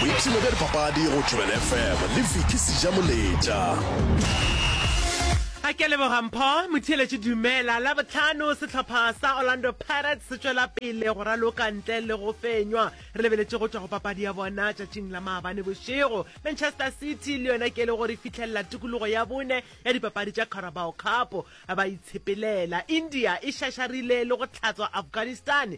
boipshino bja dipapadi go jubel fm le viki seja moletša a ke leboga mpho motheeletše dumela la botlhano setlhopha sa orlando pirates se tšwela pele go raloka ntle le go fenywa re lebeletše go tšwa go papadi ya bona tšatšing la maabane bošego manchester city le yona ke le gore fitlhelela tikologo ya bone ya dipapadi tša carabao cup ba itshepelela india e šašarile le go tlhatswa afghanistan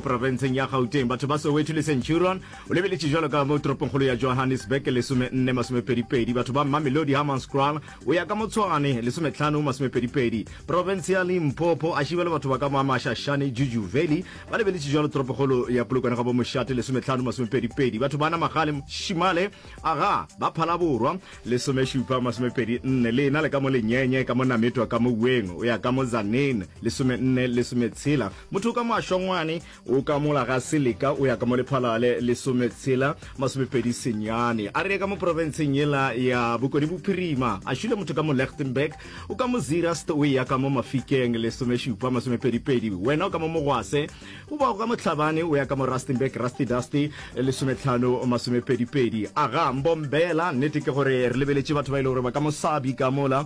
Profenseng ya Gauteng, batho ba Soweto le Centurion o lebeletše jwalo ka mo toropongkgolo ya Johannesburg, lesome nne, masome pedi pedi. Batho ba Mamelodi, Hammanskraal o ya ka mo Tshwane, lesome tlhano, masome pedi pedi. Profense ya Limpopo, Ashibwe le batho ba ka mo Amashashane, Juju Valley ba lebeletše jwalo toropongkgolo ya Polokwane ga bo Moshate, lesome tlhano, masome pedi pedi. Batho ba Namagale, Shimale, Aga ba Phalaborwa, lesome šupa, masome pedi nne. Le ena le ka mo Lenyenye, ka mo Nametwa, ka mo Ueng o ya ka mo Tzaneen, lesome nne, lesome tshela. Motho ka moašongwane o ka mola ga seleka o ya ka mo lephalale lesometshela masomepedi senyane a re ka mo porofenseng yela ya bokone bophirima a šule motho ka mo lechtenberg o ka mo zirast o ya ka mo mafikeng lesomešupa masomepedipedi wena o ka mo mogwase o ba go ka mohlabane o ya ka mo rustenburg rusty dusty lesometlhano masomepedipedi aga mbombela nnete ke gore re lebeletše batho ba ile e gore ba ka mosabi ka mola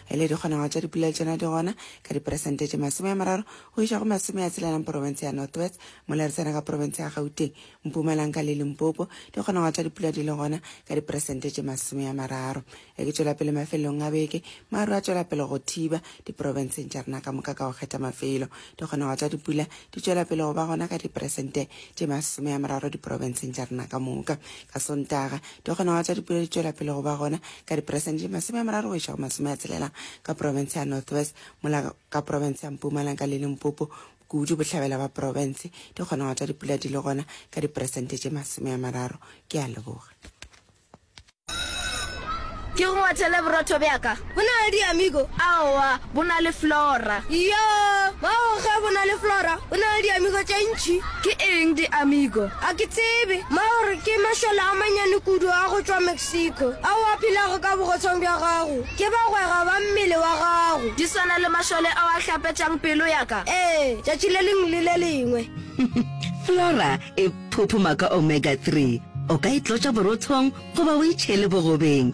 e le dikgonagalo tša dipula tšona di gona ka diperesente tše masome a mararo go iša go masome a tshelanang porofense ya north west mola re tsena ka porofense ya gauteng mpumalanka le limpopo dikgonagalo tša dipula di le gona ka diperesente tše masome a mararo e ke tšwela pele mafelelong a beke maru a tšwela pele go thiba diporofenseng tša rena ka moka ka go kgetha mafelo dikgonagalo tša dipula di tšwela pele go ba gona ka diperesente tše masome a mararo diporofenseng tša rena ka moka ka sontaga Di kgona go tsa dipulo di tšwela pele go ba gona ka diperesente di masome a mararo go iša go masome a tshelela ka porofense ya North West, mola ka porofense ya Mpumalanga le Limpopo, kudu bohlabela ba porofense, di kgona go tsa dipula di le gona ka diperesente tše masome a mararo. Ke a leboga. Ke go ngwathele borotho bja ka. Bo na le diamigo? Aowa, bo na le flora. Iyoo, mago ge bo na le flora, bo na le diamigo tše ntši. Ke eng diamigo? Ga ke tsebe. Mago re ke mašole a manyane kudu a go tšwa Mexico, ao a phelago ka bogotshong bja gago. Ke bagwera ba mmele wa gago. Di swana le mašole ao a hlapetšang pelo ya ka? Ee, tšatši le lengwe le le lengwe. Flora e phuphuma ka omega-three. O ka e tlotša borothong goba o e tšhele bogobeng.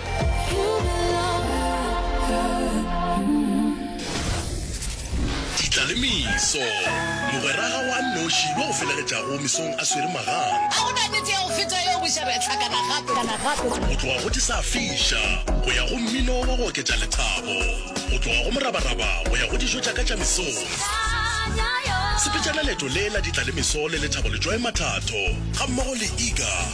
Ditla le meso. Mogweraga wa nnoši yo o felegetšago mesong a swere magang. A go na nete ya go feta yeo boša re hlakana gape? Go tloga go di sa fiša go ya go mmino wa go oketša lethabo. Go tloga go morabaraba go ya go dijo tša ka tša mesong. Sepetšana leeto le la ditla le meso le lethabo letšwae mathatho gammogo le Iga.